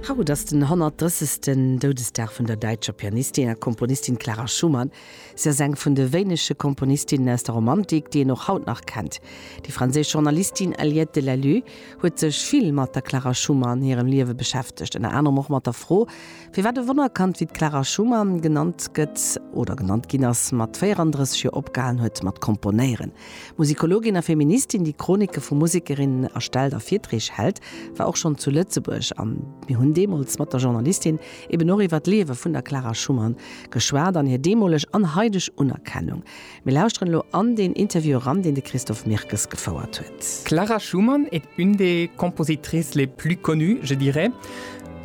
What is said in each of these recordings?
Haut ass den 130. Doudesdag vun der däitscher Pianistin a Komponistin Clara Schumann. Si ass eng vun de wéinege Komponistinnen aus der Romantik, déi een och haut nach kennt. Déi franséisch Journalistin Aliette Dell'Allu huet sech vill mat der Clara Schumann hirem Liewe beschäftegt, ënner anerem och mat der Fro, firwat e Wonnerkand wéi d'Clara Schumann genannt gëtt oder genannt ginn ass, mat 34 Joer opgehalen huet mat komponéieren. Musikologin a Feministin, déi Chronike vu Musekerinnen erstellt a Virtreeg hält, war och schonn zu Lëtzebuerg an mir hunn deemools mat der Journalistin eben och iwwer d'Liewe vun der Clara Schumann geschwat an hir deemoleg an haideg Unerkennung. Mir lauschteren elo an deen Interview eran, deen de Christophe Mirkes gefouert huet. Clara Schumann est une des compositrices les plus connues, je dirais.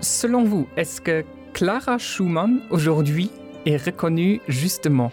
Selon vous, est-ce que Clara Schumann aujourd'hui est reconnue justement?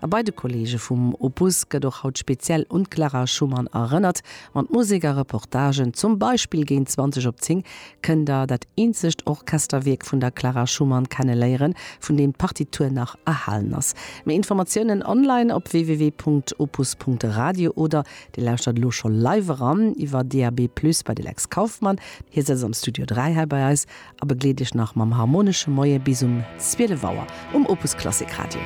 A bei de Kolleege vum Opus gëtt och haut speziell un d'Clara Schumann erënnert. Mat Musek a Reportagen, zum Beispill géint 20 op 10, kënnt der dat eenzegt Orchesterwierk vun der Clara Schumann kenneléieren, vun deem d'Partitur nach erhalen ass. Méi Informatiounen online op www.opus.radio oder Dir lauschtert elo scho live eran iwwer DAB+ bei de Lex Kauffmann. Hie sëtzt am Studio 3 hei bei eis a begleet Iech nach mam harmonesche Moie bis um 12 Auer um Opus Klassik Radio.